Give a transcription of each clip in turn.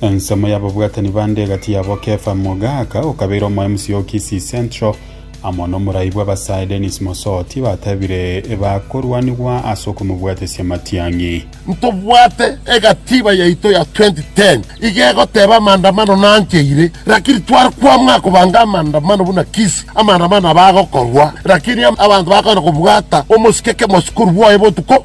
Ensemo y'ababwatani bande egati yabo Kefa Mogaka okabeire omoemsi o Kisii Central amo n'omorai bw'abasae Dennis Mosoti batebire bakorwanigwa ase okomobwatesia matiang'i. Ntobwate egatiba yaito ya 2010 iga egoteba amandamano nancheire lakini tware kwamua kobanga amandamano buna Kisii amandamano aba agokorwa lakini abanto bakoenda kobwata omosike kemosukuru bwoye botuko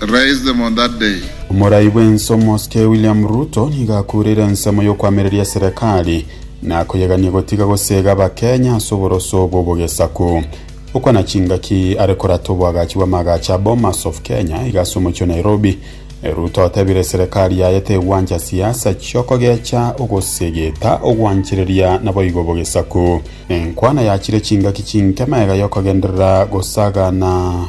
raised them on that day. Omorai bw'ense omosike William Ruto nigo akureire ensemo y'okoamereria serekari na koyegania gotiga gosega abakenya ase oboroso bw'obogesaku. Okwa na chingaki are korata oboagachi bw'amaagacho a Bomas of Kenya iga ase omochie o Nairobi, Ruto otebire serekari yaye tegwancha siasa chiokogecha ogosegeta ogwanchereria naboigo obogesaku. Enkwana yachire chingaki chinke maega yokogenderera gosagana.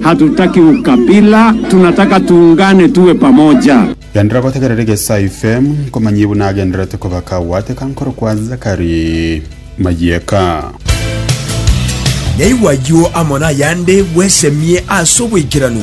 Hatutaki ukabila, tunataka tuungane tuwe pamoja. Genderera gotegerera egesai FM nkomanyie buna agendererete kobaka gwateka nkorokwa Zakari Mayeka. Yaigwa ayio amo nayande bwesemie ase oboikeranu.